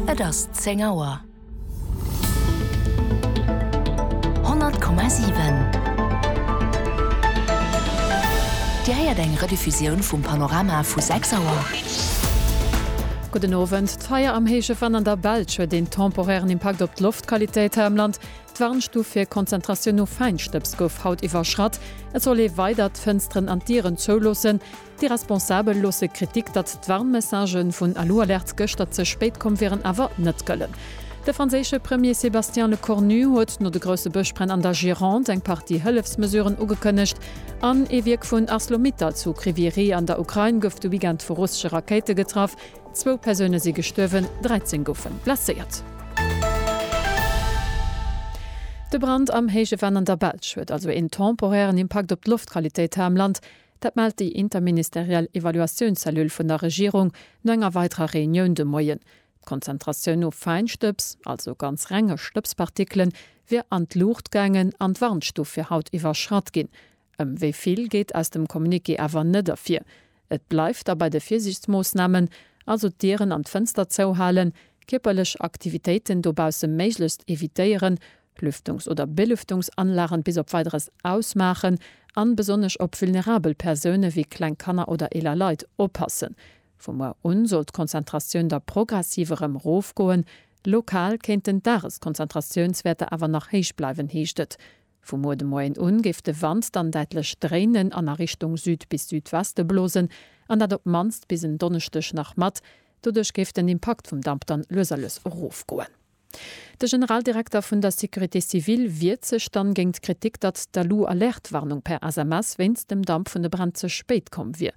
Et ass zéng Auer. 100,7 Dir héiert eng Rediffusioun vum Panorama vu 6 Auer. Gudden Owend. D'Feier am héije Venn an der Belsch huet een temporären Impakt op d'Loftqualitéit hei am Land. D'Warnstuf fir Konzentratioun no Fäinstëbs gouf haut iwwerschratt. Et soll ee weider d'Fënsteren an d'Dieren zouloossen. Déi Responsabel loosse Kritik, datt d'Warnmessagë vun Alu-Alerte gëschter ze spéit komm wieren, awer net gëllen. De franséische Premier Sébastien Lecornu huet no de grousse Bëschbränn an der Gironde eng Partie Hëllefsmesuren ugekënnegt. An ee Wierk vun Arcelor-Mittal zu Kryvyi Rih an der Ukrain gouf de Weekend vu russesche Rakéite getraff. Zwou Persoune si gestuerwen, 13 goufe blesséiert. De Brand am héije Venn an der Belsch huet also een temporären Impakt op d'Loftqualitéit hei am Land. Dat mellt déi interministeriell Evaluatiounscellule vun der Regierung no enger weiderer Reunioun de Moien. D'Konzentratioun no Fäinstëbs, also ganz renge Stëbspartikelen, wier an d'Luucht gaangen an d'Warnstuf fir haut iwwerschratt ginn. Ëm wéi vill geet aus dem Communiqué awer net ervir. Et bleift da bei de Virsiichtsmoossnamen, also d'Dieren an d'Fënster zouhalen, kierperlech Aktivitéiten dobausse méiglechst evitéieren, Lüftungs oder Belüftungsanlagen bis op Weideres ausmaachen an besonnesch op vulnerabel Persounen wéi kleng Kanner oder eeler Leit oppassen. Vu muer un soll d'Konzentratioun da progressiv erëm rofgoen. Lokal kéinten d'Dageskonzentratiounswäerter awer nach héich bleiwen, heescht et. Vu muer de Moien un géif de Wand dann däitlech dréinen an a Richtung Süd bis Südweste blosen an dat op d'mannst bis en Donneschdeg nach mat. Doduerch géif den Impakt vum Damp dann lues a lues erofgoen. De Generaldirekter vun der Sécurité civile wiert sech dann géint d'Kritik, datt d'Alu-Alerte-Warnung per SMS wéinst dem Damp vun de Bränn ze spéit komm wier.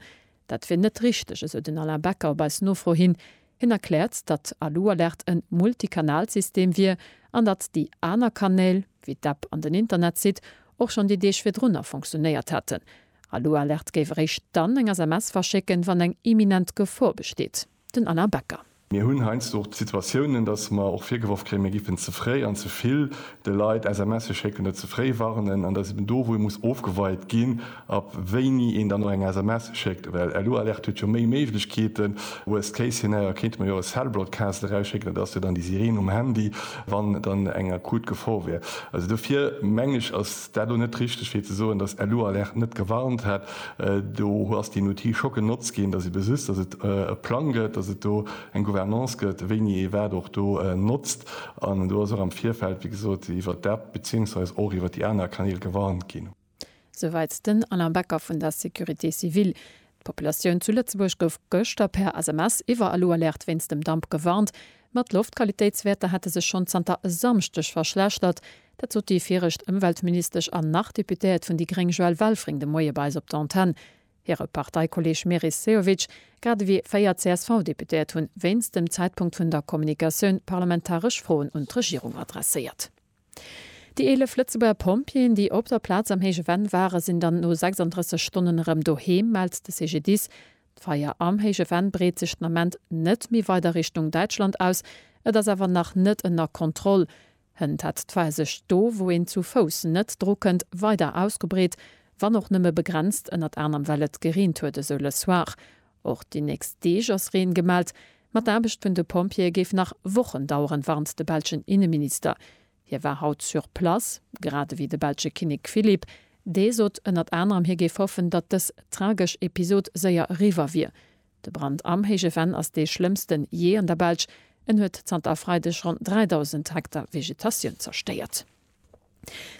Dat wier net richteg, esou den Alain Becker op eis Nofro hin. Hien erkläert, datt Alu-Alerte en Multikanalsystem wier an datt déi aner Kanäl, wéi d'App an den Internetsite, och schonn déi Deeg virdrunner fonctionéiert hätten. Alu-Alerte géif eréischt dann eng SMS verschécken, wann eng imminent Gefor besteet. den Alain Becker. Mir hunn heiansdo och d'Situatiounen, datt mer och virgeworf kréien, mir géifen ze fréi an ze vill de Leit SMSe schécken, dat ze fréi warnen. An dat ass eben do, wou ee muss ofgeweit ginn, ab wéini een dann och eng SMS schéckt. Well LU-Alerte huet jo méi Méiglechkeeten. Worst case scenario kéinte mer jo e Cell Broadcast erausschécken, dat ass jo dann déi Sireen um Handy, wann dann eng akut Gefor wär. Also dofir mengen ech, ass. Et war do net richteg fir ze soen, datt LU Alerte net gewarnt hätt. Do ass deen Outil scho genotzt ginn, datt ee besisst, datt et e Plang gëtt, datt et do eng Gouvernance gëtt, wéini ee wat och do notzt. An do ass och am Virfeld, wéi gesot, iwwert d'App beziéungsweis och iwwert déi aner Kanäl gewarnt ginn. Souwäit den Alain Becker vun der Sécurité civile. D'Populatioun zu Lëtzebuerg gouf gëschter per SMS iwwer LU Alerte wéinst dem Damp gewarnt. Ma d'Loftqualitéitswäerter hätte sech schonn zanter e Samschdeg verschlechtert. Dat sot déi viregt Ëmweltministesch an nach Deputéiert vun déi gréng Joëlle Welfring de Moie bei eis op der Antenn. Hire Parteikolleeg Meris Sehovic, grad ewéi véier CSV-Deputéiert hunn wéinst dem Zäitpunkt vun der Kommunikatioun parlamentaresch Froen un d'Regierung adresséiert. Déi 11 Lëtzebuerger Pompjeeën, déi op der Plaz am Héije Venn ware sinn dann no 36 Stonnen erëm doheem, mellt de CGDIS. D'Feier am Héije Venn breet sech den Ament net méi weider Richtung Däitschland aus. Et ass awer nach net ënner Kontroll. Hënt hat d'Fahr sech do, wou een zu Fouss net dru kënnt, weider ausgebreet, wann och nëmme begrenzt, ënnert anerm well et gereent huet, esou Le Soir. Och déi nächst Deeg ass Reen gemellt, ma d'Aarbecht vun de Pompjeeë géif nach Wochen daueren, warnt de belschen Inneminister. Hie war haut sur place, grad ewéi de belsche Kinnek Philippe. Dee sot ënnert anerem, hie géif hoffen, datt dës tragesch Episod séier eriwwer wier. De Brand am Héije Venn ass dee schlëmmsten jee an der Belsch. En huet zanter e Freideg ronn 3.000 Hektar Vegetatioun zerstéiert.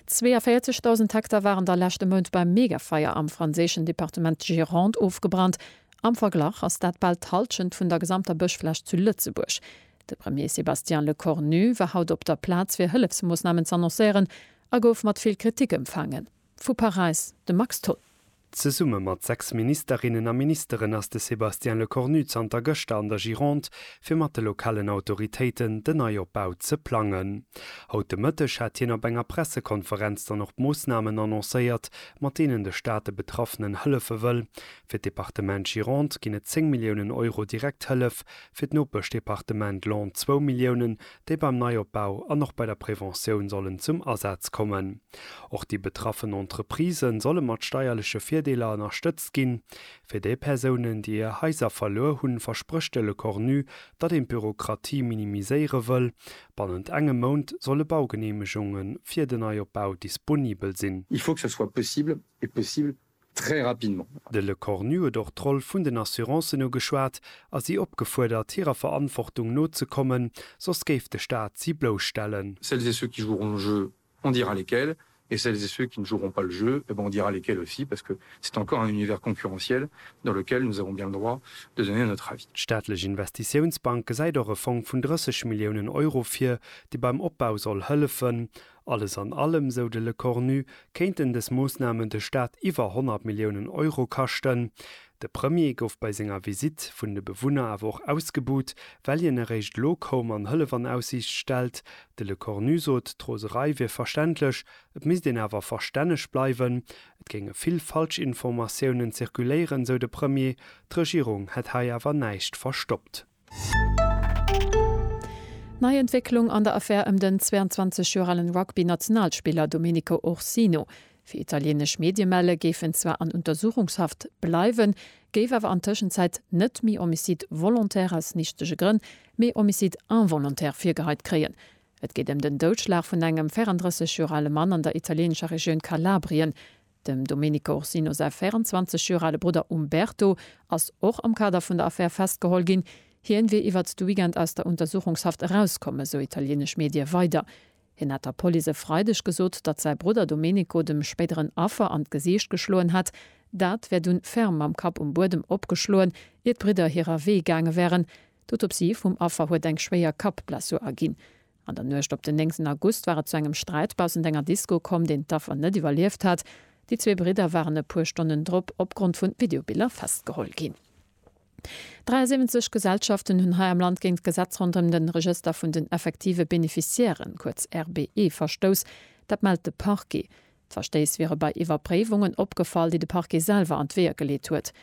42.000 Hektar waren da leschte Mount beim Megafeier am franséischen Departement Gironde ofgebrannt. Am Verglach ass dat bal d'Hallschent vun der gesamter Bëschfläch zu Lëtzebuerg. De Premier Sébastien Lecornu war haut op der Plaz fir Hëllefsmoossnamen z'annoncéieren a gouf mat vill Kritik empfaangen. Vu Paräis de Max Tholl. Zesumme mat sechs Ministerinnen a Ministeren ass de Sébastien Lecornu zanter gëschter an der Gironde, fir mat de lokalen Autoritéiten den Neiopbau ze plangen. Haut de Mëtteg hat hien op enger Pressekonferenz dann och d'Moossnamen annoncéiert, mat deenen de Staat de Betraffenen hëllefe wëll. Fir d'Departement Gironde ginn et 10 Milliounen Euro Direkthëllef, fir d'Nopeschdepartement Laon zwou Milliounen déi beim Neiopbau an och bei der Preventioun sollen zum Asaz kommen. Och déi betraffen Entreprisë solle mat steierleche Virdeeler ënnerstëtzt ginn. Fir déi Persounen, déi hir Haiser verluer hunn, versprécht de Le Cornu, datt een d'Bürokratie minimiséiere wëll. Bannent engem Mount solle Baugeneemegunge fir den Neiopbau disponibel sinn. Il faut que ce soit possible et possible très rapidement. De Lecornu huet och d'Roll vun den Assurancen ugeschwat a si opgefuerdert, hirer Verantwortung nozekommen, soss géif de Staat si blousstellen. Celles et ceux qui joueront le jeu, on dira lesquels, et celles et ceux qui ne joueront pas le jeu, eh bien, on dira lesquels aussi, parce que c'est encore un univers concurrentiel dans lequel nous avons bien le droit de donner notre avis. D'staatlech Investitiounsbank gesäit och e Fong vun 30 Milliounen Euro vir, dee beim Opbau soll hëllefen. Alles an allem, sou de Lecornu, kéinten dës Moossnamen de Staat iwwer 100 Milliounen Euro kaschten. De Premier gouf bei senger Visitt vun de Bewunner awer och ausgebuht, well hien eréischt elo koum an Hëllef an Aussiicht stellt. De Lecornu sot, d'Roserei wier verständlech, et misst een awer verstänneg bleiwen. Et géinge vill Falschinformatiounen zirkuléieren, sou de Premier, d'Regierung hätt hei awer näischt verstoppt. Nei Entwécklung an der Affär ëm den 22 Joer alen Rugby-Nationalspiller Domenico Ursino. Wéi italieenesch Medie melle géif en zwar an Untersuchungshaft bleiwen, géif awer an Tëschenzäit net méi Homicide volontaire aus nichtege Grënn, mee Homicide involontaire virgeheit kréien. Et geet ëm den Doudschlag vun engem 34 Joer ale Mann an der italieenescher Regioun Kalabrien. Dem Domenico Orsino säi 24 Joer ale Brudder Umberto ass och am Kader vun der Affär festgeholl ginn. Hien wier iwwert de Weekend aus der Untersuchungshaft erauskomm, esou italienesch Medie weider. Hien hat der Police e Freideg gesot, datt säi Brudder Domenico dem spéideren Affer an d'Gesiicht geschloen hätt. Dat wär dunn ferm mam Kapp um Buedem opgeschloen, ier d'Bridder hirer Wee gaange wären. D'Autopsie vum Affer huet eng schwéier Kappblessur erginn. An der Nuecht op den 9 August war et zu engem Sträit baussent enger Disco komm, deen d'Affer net iwwerlieft hat. Déi zwee Bridder waren e puer Stonnen drop opgrond vun Videobiller festgeholl ginn. 73 Gesellschaften hunn hei am Land géint d'Gesetz ronderëm den Regëster vun den effektive Bénéficiairen, kuerz RBE, verstouss. Dat mellt de Parquet. D'Verstéiss wiere bei Iwwerpréiwungen opgefall, déi de Parquet selwer an d'Weeër geleet huet.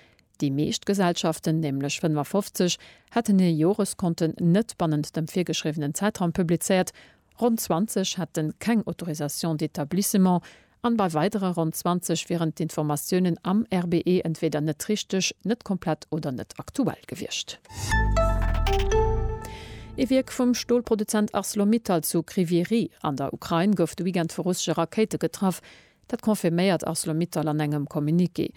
Déi meescht Gesellschaften, nämlech 55, hätten hir Joreskonten net bannent dem virgeschriwwenen Zäitraum publizéiert, ronn 20 hätte keng Autorisation d'établissement an bei weidere ronn 20 wieren d'Informatiounen am RBE entweeder net richteg, net komplett oder net aktuell gewiescht. Ee Wierk vum Stolproduzent Arcelor-Mittal zu Kryvyi Rih an der Ukrain gouf de Weekend vu russesche Rakéite getraff. Dat confirméiert Arcelor-Mittal an engem Communiqué.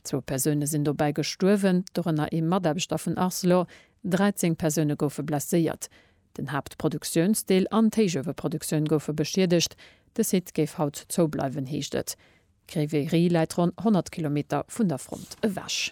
Zwou Persoune sinn dobäi gestuerwen, dorënner ee Mataarbechter vun Arcelor. 13 Persoune goufe blesséiert. Den Haaptproduktiounsdeel an d'Héichueweproduktioun goufe beschiedegt. De Site géif haut zoubleiwen, heescht et. Kryvyi Rih läit ronn 100 Kilometer vun der Front ewech.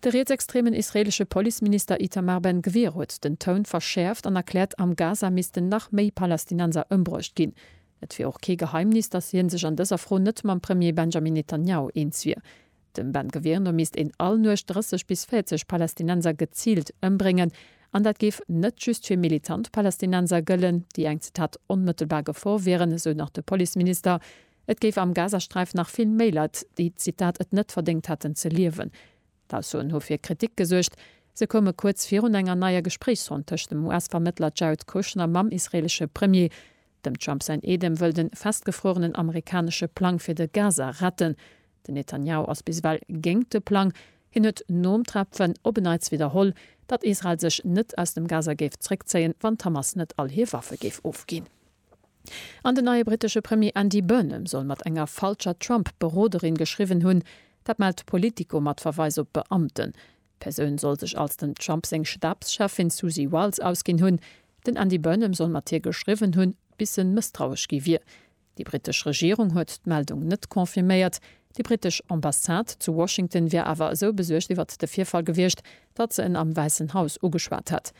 De rietsextremen israeelesche Policeminister Itamar Ben Gvir huet den Toun verschäerft an erkläert, am Gaza missten nach méi Palästinenser ëmbruecht ginn. Et wier och kee Geheimnis, datt hien sech an dëser Fro net mam Premier Benjamin Netanjahu eens wier. Dem Ben Gvir no misst een all Nuecht 30 bis 40 Palästinenser geziilt ëmbréngen. An dat géif net just fir militant Palästinenser gëllen, déi eng, Zitat, onmëttelbar Gefor wieren, esou nach de Policeminister. Et géif am Gazasträif nach vill méi Leit, déi, Zitat, et net verdéngt hätten ze liewen. D'Aussoen hu fir Kritik gesuergt. Se koume kuerz virun enger neier Gespréichsronn tëscht dem US-Vermëttler Jared Kushner mam israeelesche Premier. Dem Trump säin Eedem wëll de festgefruerenen amerikanesche Plang fir de Gaza retten. Den Netanjahu ass bis ewell géingt de Plang. Hien huet nom Treffe op en Neits widderholl, datt Israel sech net aus dem Gaza géif zréckzéien, wann d'Hamas net all hir Waffe géif ofginn. An den neie brittesche Premier Andy Burnham soll mat enger falscher Trump-Beroderin geschriwwen hunn. Dat mellt Politico mat Verweis op Beamten. D'Persoun soll sech als dem Trump seng Stabscheffin Susie Wiles ausginn hunn. Den Andy Burnham soll mat hir geschriwwen hunn, bis en mësstrauesch gi wier. Déi brittesch Regierung huet d'Meldung net confirméiert. Déi brittesch Ambassade zu Washington wier awer esou besuergt iwwert de Virfall gewiescht, datt se en am Wäissen Haus ugeschwat hätt.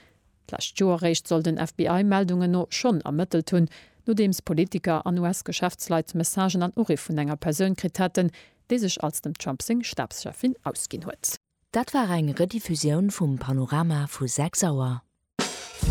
D'lescht Joer réischt soll den FBI Meldungen no schonn ermëttelt hunn, nodeems Politiker an US-Geschäftsleit Messagen an Uriff vun enger Persoun kritt haten, déi sech als dem Trump seng Stabscheffin ausginn huet. Dat war eng Rediffusioun vum Panorama vu 6 Auer.